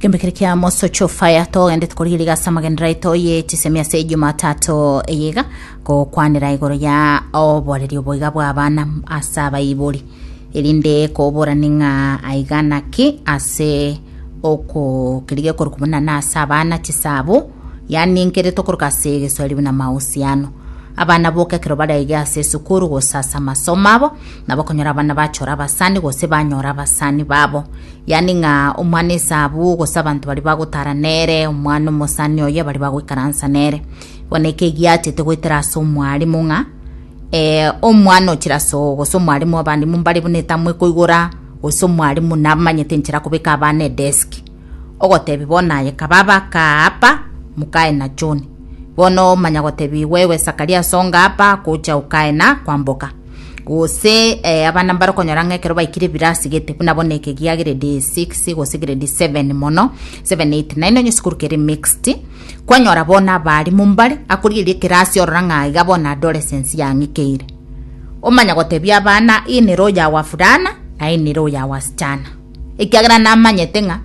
Kembe kere kia mosocho fire togendete korigiga ase amagendera aito ye chisemi ase Jumatatu eyiga gokwanera igoro ya oboreri oboiga bwa abana ase abaibori erinde koborani ng'a aiga naki ase okokirigia korwa buna na ase abana chisabo yaani nkere tokoroka ase egeswahili buna mahusiano abana boka ekero baraige ase esukuru gose ase amasomo abo Nabakonyora abana bachora abasani gose banyora abasani babo, yaani ng'a omwana esabu gose abanto baria bagotara nere, omwana omosani oye baria bagoikaransa nere. Bono eke egiachete goetera ase omwarimu ng'a eh, omwana ochire ase oo gose omwarimu w'abarimu mbare buna etamwe koigora gose omwarimu namanyete enchera kobeka abana edesk ogotebia bono aye kababa aka apa mukae na John bono manya gotebia igo ewe Sakaria songa apa gocha ukae na kwamboka Gose eh, abana mbarokonyora ng'a ekero baikire ebirasi gete buna bono eke gia grade 6 gose grade 7 mono 7 8 9 onye esukuru kere mixed kwanyora bono abarimu mbare akorieria ekerasi orora ng'a iga bono adolescence yang'ikeire omanya gotebia abana hii ni roho ya wavulana na hii ni roho ya wasichana ekiagera namanyete ng'a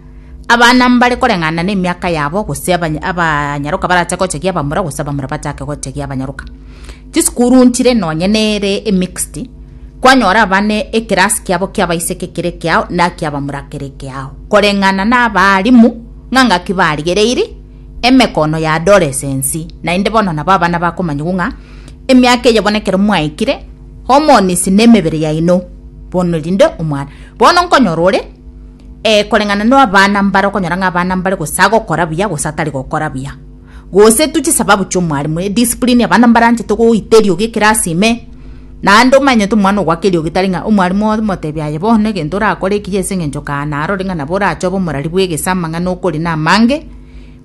abana mbare koreng'ana na emiaka yabo gose abany- abanyaroka barache gochegia abamura gose abamura bachake gochegia abanyaroka Chisukuru nchire nonye nere emixed, kwanyora abana ekerasi kiabo ki'abaiseke kere kiao na ki'abamura kere kiao, koreng'ana nabaalimu ng'a ngaki barigereiri emekono ya adolescency, naende bono nabo abana bakomanyigwa ng'a emiaka eye bono ekero mwaikire hormones nemebere yaino bono rinde omwana. Bono nkonyora ore koreng'ana nabana mbare okonyora ng'a abana mbare gose agokora buya gose atari gokora buya. gose tu chisababu chi'omwarimu, ediscipline abana mbaranchete goita eriogi ekerasi ime, naende omanyete omwana ogoaka eriogi tari ng'a omwarimu omotebi aye bono egento orakore ekiya ase eng'encho kaane arore ng'a nabo orache obe omorari bw'egese amang'ana okori namange,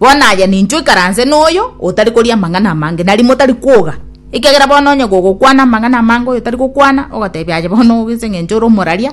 bono aye nincho ikaranse noyo otari koria amang'ana amange, nari motari kwoga, ekiagera bono onye gogokwana amang'ana amange oyo tari gokwana, ogotebi aye bono oge ase eng'encho ore omoraria.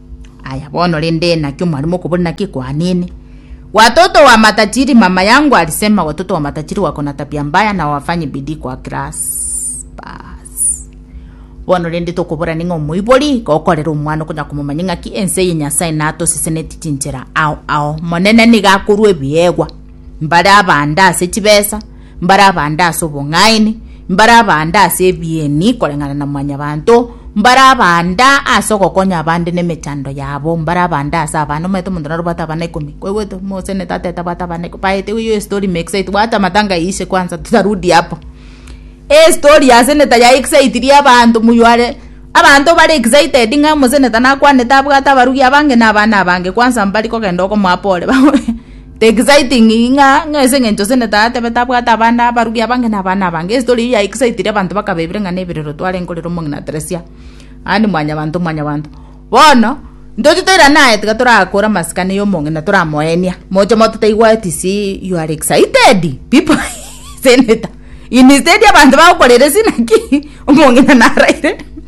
Aya bono rende naki omwarimo okobori naki kwanene? Watoto wa matajiri mama yangu alisema watoto wa matajiri wako na tabia mbaya na wafanyi bidii kwa class bas bono rende tokobora ning'a omoibori gokorera omwana okonya komomanya ng'aki ense ye nyasaye natosiseneti chinchera ao ao monene niga akorwa ebiegwa mbare abande ase chibesa, mbare abande ase obong'aini, mbare abande ase ebieni koreng'ana na mwanyabanto, mbare abande ase ogokonya abande nemechando yabo, mbare abande ase abana, omanyete omonto narobwate abana ikomi, kwaigwete? Omosene tata etabwate abana ikomi, bae ete hiyo story makes sense, bwata amatanga yaishe kwanza tutarudi hapo. Estory ya seneta ya excitiri abanto moyare, abanto bare excited ng'a omoseneta nakwanete abwate abarugi abange na abana abange, kwanza mbari kogenda okomoa pole. The exciting ng'a ng'a ase engencho Sene Tata atebete abwate abande abarugi abange na abana abange. Estory eyio ya excitire abanto bakabebire ng'a neberero twarenge korera omong'ina Tresia yaani mwanyabanto mwanyabanto. Bono ntoche toira naye tiga torakore amasikani ya omong'ina toramoenia moche moto taigwa etc you are excited people Senator instead abanto bagokorera esina ki omong'ina naraire.